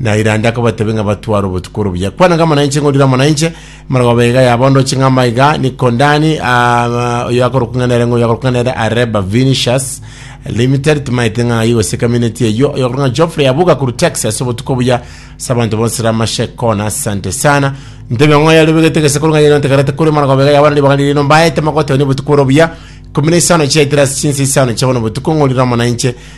Na Irande akabatebia ng'a batware obotuko oro buya. Kwana ng'ama nainche, ng'orire amo nainche, marogoba iga yabondoche ng'ama iga, Nikondani, ah, oyo akorokwa ng'a nere, ng'oyo akorokwa ng'a nere Areba Vinicius Limited, timaete ng'a aye gose community eyio, oyo akorokwa ng'a Geoffrey Abuga korwa Texas, obotuko buya, ase abanto bonsi ramashe kona, asante sana. Ntebia ng'o yari obegete gese korwa ng'a yari ontegerete korwa marogoba iga yabana ribaga ririno mbaete magotonia obotuko oro buya, ikomi na isano chiaetire ase chinsa isano chia bono botuko, ng'orire amo nainche,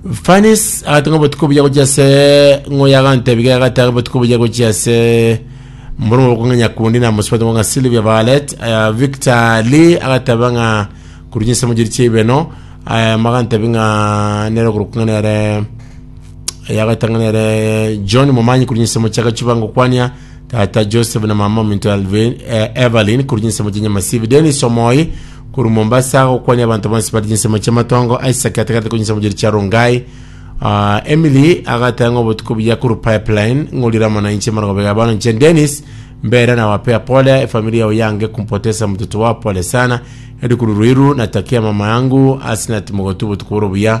Fanis agati ng'a obotuko buya gochia ase ng'o yagantebi ga egati abe botuko buya gochia ase mborumo bokong'a nyakundi na mosubati ng'a Sylvia Violet eh, Victor Lee agateba ng'a kurunya ase mojeri chia ibeno eh, magantebi ng'a nere okorokung'a nere yagaita ng'a nere John Momanyi kurunya ase mochaka chibango kwania Tata Joseph na mama ominto Alvin, eh, Evelyn korwa chinsemo chia Nyamasibi, Dennis Omoi korwa Mombasa gokwania abanto bonsi bari chinsemo chia Matongo, Isaac atagarete korwa chinsemo chiria chia Rongai, Ah, Emily agataya ng'a obotuko buya korwa Pipeline ng'orire amo nainche marogoba iga bono inche Dennis mbera na wapea pole efamilia yao yange kumpotesa mtoto wao pole sana Edu korwa Ruiru natakia mama yangu Asnat Mogotu obotuko boro buya